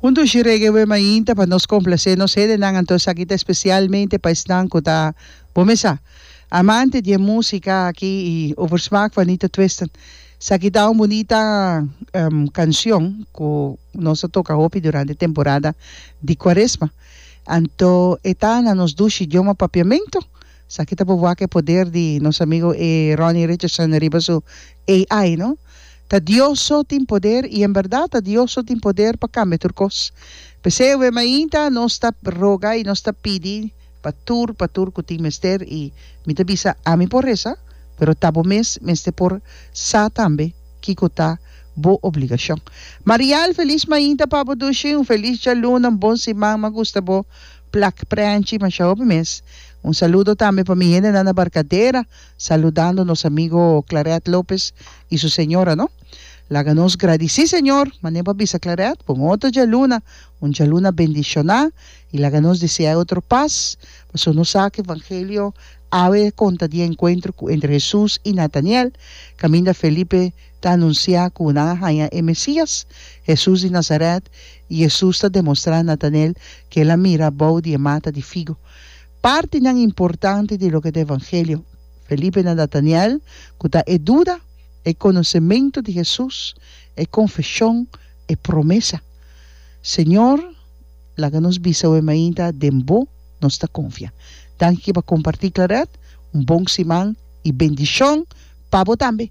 Huntu shi reggae wen mainta pa nos complacé nos hedenan anto esaki ta especialmente pa esnan cu ta, bo mesa, amante di e musica aki y over smaak van Nita Twisten. Esaki ta un bunita cancion cu nos a toca hopi durante temporada di Cuaresma. Anto e ta na nos dushi idioma Papiamento. Esaki ta por wak e poder di nos amigo e Ronnie Richardson riba su AI, no? Ta Dios so tin poder y en berdad ta Dios so tin poder pa cambia tur cos. P'esey awe mainta nos ta roga y nos ta pidi pa tur, pa tur cu tin mester y mi ta bisa ami por reza, pero ta bo mes mester por sa tambe kico ta bo obligacion. Marial, feliz mainta pa bo Dushi, un feliz djaluna, un bon siman, m'agusta bo. Plak Prenchi mashá hopi mes. Un saludo tambe pa mi hendenan na Barcadera, saludando nos amigo Claret Lopez y su señora no. Laga nos gradici Señor, manera pa bisa Claret, pa un otro djaluna, un djaluna bendiciona y laga nos deseae otro paz, paso nos sa cu evangelio awe conta di encuentro cu entre Jesús y Nataniel, caminda Felipe ta anunsiá ku nan a haña e Mesías, Hesus di Nasarèt, i Hesus ta demostrá Natanel ku el a mira abou di e mata di figu. Partinan importante di loke ta e Evangelio, Felipe na Natanel, ku ta e duda, e konosementu di Hesus, e konfeshon, e promesa, Señor, laga nos bisa awe mainta, den bo nos ta konfia. Danki pa kompartí Claret, un bon siman i bendishon pa bo tambe!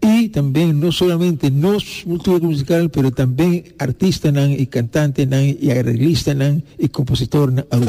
Y tambe no solamente nos cultura musical pero tambe artistanan y cantantenan y arreglistanan y compositornan Aruba.